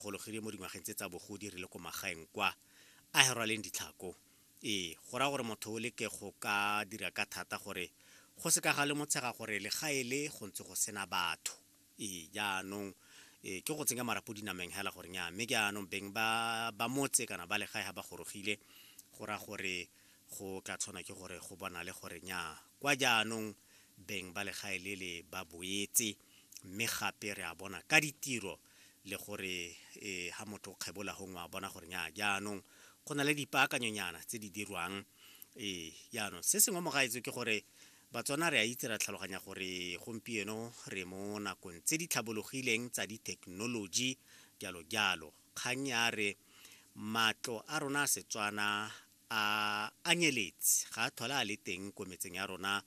kgologile mo dingwageng tse tsa bogodi re le ko magaeng kwa a herwaleng ditlhako ee go raya gore motho o leke go ka dira ka thata gore go se ka ga le motshega gore legae le go ntse go sena batho ee jaanong e ke go tsenya marapo dinameng hela gore nya mme ke anong beng ba ba motse kana ba legae ha ba gorogile go ra gore go tla tshwana ke gore go bona le gore nya kwa jaanong beng ba legae le le ba boetse mme gape re a bona ka ditiro le gore e ha motho o kgebola gongwe a bona gore nya jaanong go na le dipaakanyonyana tse di dirwang ee jaanong se sengwe mo gaetso ke gore batswana re a itse ra tlhaloganya gore gompieno re mo nakong tse di tlhabologileng tsa dithekenoloji jalo jalo kgang ya re matlo a rona a setswana a anyeletse ga a thola a le teng ko metseng ya rona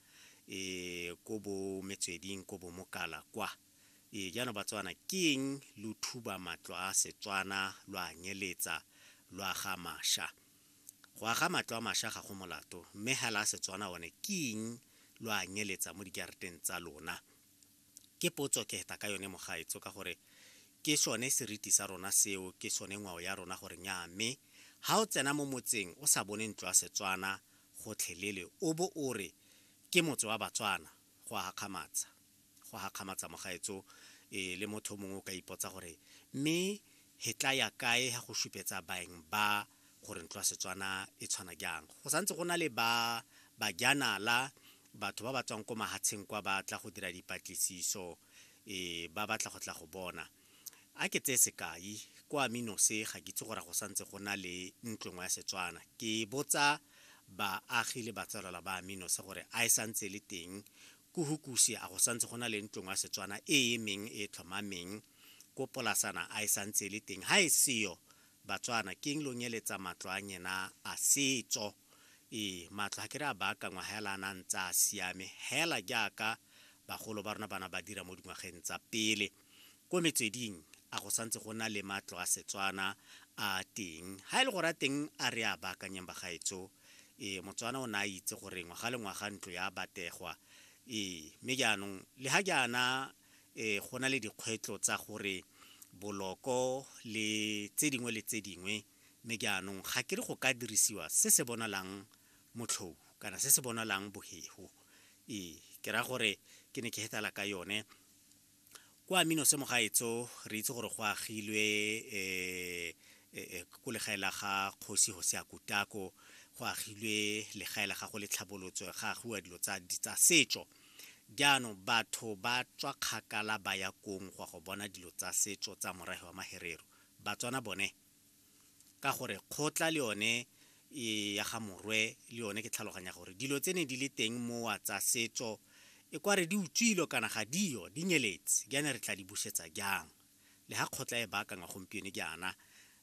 e ko bo metsweding ko bo mokala kwa Ee, jaanong Batswana, ke eng lo thuba matlo a Setswana lo a nyeletsa lo aga masha? Go aga matlo a masha ga go molato, mme hela a Setswana one ke eng lo a nyeletsa mo dijareteng tsa lona? Ke potso ke heta ka yone mogaetso ka gore ke sone seriti sa rona seo, ke sone ngwao ya rona gore nyaa mme ha o tsena mo motseng o sa bone ntlo ya Setswana gotlhelele o bo o re ke motse wa Batswana, go a gakgamatsa go a gakgamatsa mogaetso e le motho mongwe o ka ipotsa gore mme he tla ya kae ha go supetsa baeng ba gore ntlo ya setswana e tshwana jang go santse go na le ba bajanala batho ba ba tswang ko mahatsheng kwa ba tla go dira dipatlisiso e ba batla go tla go bona A ke tseye sekai, kwa Minose ga ke itse gore a go santse go na le ntlo nngwe ya Setswana. Ke botsa baagi le batsalwala ba Minose gore a e santse e le teng ko Hukuse, a go santse go na le ntlo nngwe ya Setswana e e emeng e e tlhomameng ko Polasana, a e santse e le teng. Ha e seyo, Batswana, keng lo nyeletsa matlo a nyena a setso? Ee, matlo ga ke re a baakangwa hela a na ntse a siame, hela jaaka bagolo ba rona ba na ba dira mo dingwageng tsa pele. Ko metsweding a go santse go na le matlo a Setswana a teng. Ha e le gore a teng a re a baakanyeng bagaetso, ee Motswana o ne a itse gore ngwaga le ngwaga ntlo ya bategwa. Ee, mme jaanong le ha jaana um go na le dikgwetlho tsa gore boloko le tse dingwe le tse dingwe, mme jaanong ga ke re go ka dirisiwa se se bonalang motlhou kana se se bonalang bohego. Ee, ke raya gore ke ne ke hetala ka yone. kwa minose mogaetso re itse gore go agilwe um ko legae la ga kgosi hose ya kutako go agilwe legae la gago le tlhabolotso ga agiwa dilo tsa setso jaanong batho ba tswa kgakala ba ya kong go ya go bona dilo tsa setso tsa morafe wa maherero batswana bone ka gore kgotla le yone e ya ga morwe le yone ke tlhaloganya gore dilo tse ne di le teng mowa tsa setso e kware di utswilo kana ga dio di nyeletse jaana re tla di busetsa jang le ga kgotla e baakangwa gompieno jaana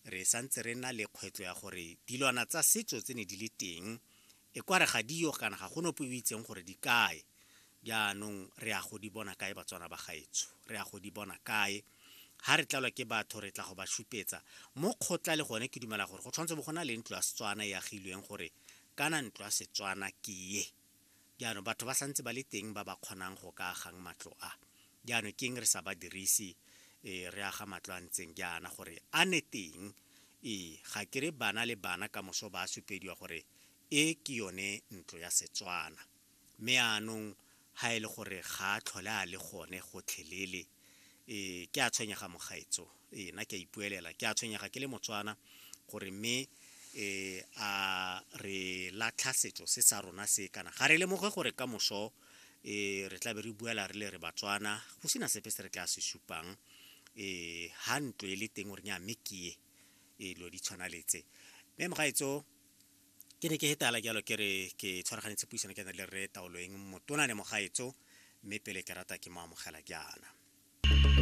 re santse re na le kgwetlho ya gore dilwana tsa setso tse ne di le teng E kware ga di yo kana ga go nope o itseng gore di kae. Jaanong re ya go di bona kae Batswana ba gaetsho? Re ya go di bona kae? Ha re tlalwa ke batho re tla go ba šupetsa mo kgotla le gone ke dumela gore go tshwanetse bo go na le ntlo ya Setswana e agilweng gore kana ntlo ya Setswana ke ye. Jaanong batho ba santse ba le teng ba ba kgonang go ka agang matlo a. Jaanong keng re sa ba dirise e, re aga matlo a ntseng jaana gore a ne teng e, ga ke re bana le bana ka moso ba supediwa gore e ke yone ntlo ya Setswana. Mme anong ha e le gore ga a tlhole a le gone gotlhelele e, ke a tshwenyega mogaetsoo. Ee, nna ke a ipuelela, ke a tshwenyega ke le Motswana gore mme eh, a re latlha setso se sa rona se kana ga re lemoge gore ka moso eh, re tla be re buela re le re Batswana go sena sepe se re tla se supang eh, ha ntlo e le teng gore nya mme ke ye eh, lo di tshwana letse mme mogaetso ke ne ke hetala jalo ke re ke tshwaraganetse puisano ke na le re taoloeng motona le mogaetso mme pele ke rata ke mo amogela jaana